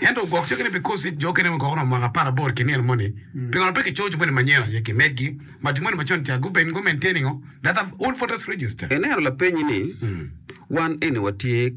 Ento ogwok cinge ni, Bikosik jo okene mukoko romo mwaka apar aboro ki nino moni, pingo pe kicoyo jo moni manyen aye ki medgi, ma jo moni macon ca guben go maintain ngo that have old voters register? Eneno lapenyi ni, Wan eni watye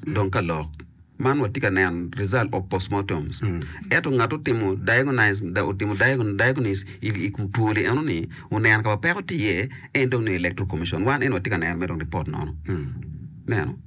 dong ka lok man watye ka neno result of postmortems, eto ngat otimo diagonise da otimo diagonise i kum twoli eno ni oneno ka ma peko tye iye en dong ni electoral commission wan eni watye ka neno me dong report nono neno.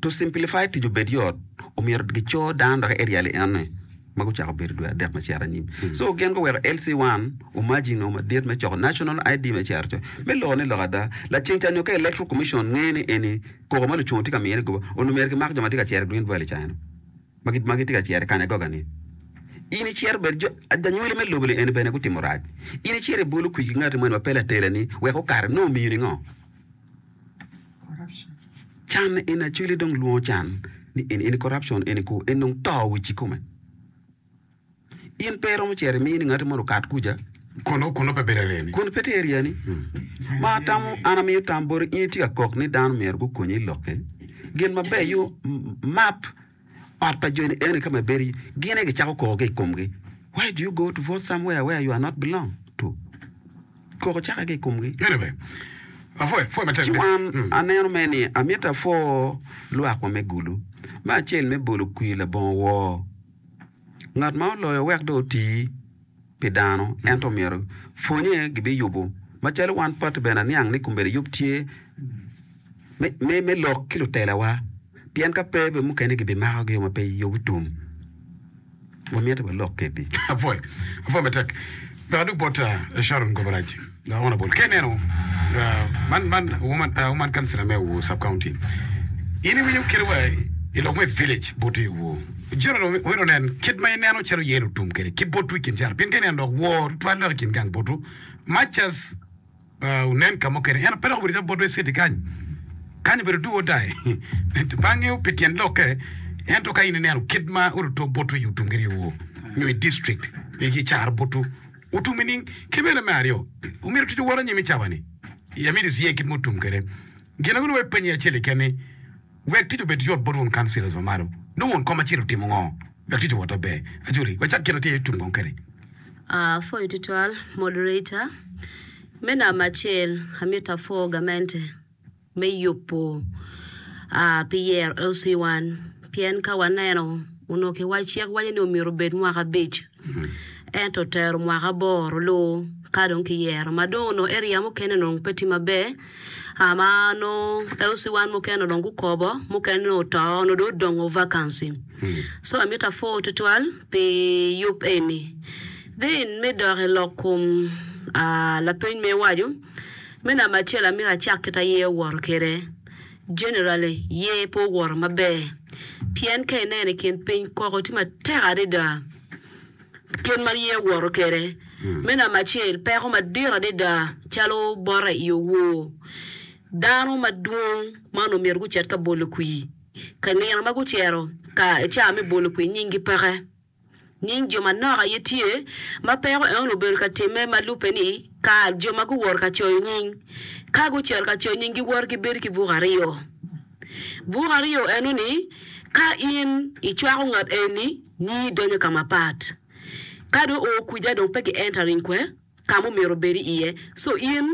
To simplify tic obed yot, omyero gico dano dok aerial i enne ma gucako bedo dwe adek me cito anyim. So gin guweko LC1 omaji nongo madit me coko National ID me cero coc. Me loko ni lok ada, laceng ca nyo ka Electoral Commission ngeyo ni eni koko ma lucungo tye ka miyone goba, onongo myero gimak jo ma tye ka cero i Green Valley ca eno, ma gitye ka cero i Kanyagoga ni, In icito bed jo, lanywali me lobo-ni eni bene gutimo rac. In icito ibolo kwir ki ngati moni ma pe latela-ni wek okato, nongo omiyo ningo? Can en acwele dong lwongo can ni en en corruption en ko en dong to wi ci kome. In pe romo cere mi ni ngati mono kat kuja. Kono kono pe bere reni. Kun pe tye area ni. Ma tamo an amiyo tam bori in itye ka kok ni dano myero gukonyi i lokke. Gin maber yo m- map Ot pa joni eno ka ma ibedo iye, gin aye gicako koko ki i komgi, Why do you go to vote somewhere where you are not belong to? Koko cako aye ki i komgi. Ci wan aneno mere ni amito apwo lwakwa me gulu, me acel me bolo kwir labongo woo, ngat ma oloyo wek dong oti. pi dano, ento myero pwonye gibiyubo. Macalo wan pati bene aniang ni kombeddi yub tye me me lok ki lutelawa, pien ka pe bene mukene gibimako gi yo ma pe yub tum. Wamyero walok kedi. Apwoyo, apwoyo matek. Pekadok bot Sharon Goberaj. Honourable Ken Eno, man man woman councillor me Owor sub county, in iwinyo kite wa i lok me village bot i Owor, general omyero onen kit ma ineno calo yen otum kede ki botu i kin caro pien ka ineno dok wor tutwal dok i kin gang botu much as onen ka mukene eno pe dok obedo calo bot west city kany kany obedo do or die bange pi tyen lokke ento ka in ineno kit ma oruto botu i otum kede i Owor nyo i district nyo i caro botu Otumi nining? Ki bene me aryo, omyero tic owot anyim i cawa-ni? I amito iciye kit ma otum kwede. Gin ango nongo ipenye acel keken ni, Wek tic obed yot bot won kaunsilas ma malo, nongo won kom acel otimo ngo wek tic owot maber? Ajoli, wacak kit ma tye tum kong kwede. A Apwoyo tutwal, Moderator. Me namba acel, amito apwo gamente. me yubo pi yero LC wan pien ka waneno onongo kiwaco cik waco ni omyero obed mwaka abic ento otero mwaka aboro luu ka dong ki yero ma dong onongo area mukene onongo pe tye maber ma nongo LC wan mukene onongo gukobo mukene nongo oto onongo dong odongo vacancy so amito apwoo tutwal pi yub eni then me dok ilok kom lapeny ma iwaco Me namba acel amito acak kit a yer owoto kwede. Generally, yer pe owoto maber. Pien ka ineno i kin piny koko tye matek adada kit ma yer owoto kwede. Me namba acel, peko madit adada calo bote i owor. Dano madwong man omyero gucit ka bolo kwir. Ka nino ma gucito ka i caa me bolo kwir nyinggi peke. Nying jo manok aye tye ma peko Eun obedo ka timme ma lubbe ni kar jo ma guwoto ka coyo nying. Ka gucito ka coyo nying giwoto ki bedo ki buk aryo. Buk aryo eno ni ka in icwako ngat eni nyingi donyo ka mapat. Ka dong oo kwica dong pe gi entering kwe. ka ma omyero obed iye. Co in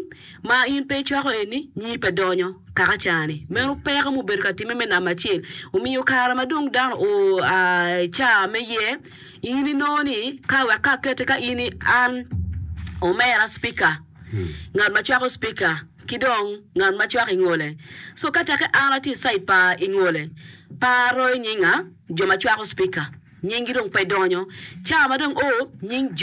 ma in pe icwako eni, nyi pe donyo kaka cani. Meno peko ma obedo ka timme me namba acel. Omiyo kare ma dong dano oa i caa me yer, in inongo ni ka wek ka akete ka in an omera Cipika, ngat ma cwako Cipika ki dong ngat ma cwako i ngole. Co ka teke an atye i cait pa i ngole, pe aroyo nyinga, jo ma cwako Cipika nyinggi dong pe donyo. Caa ma dong o, nying jo.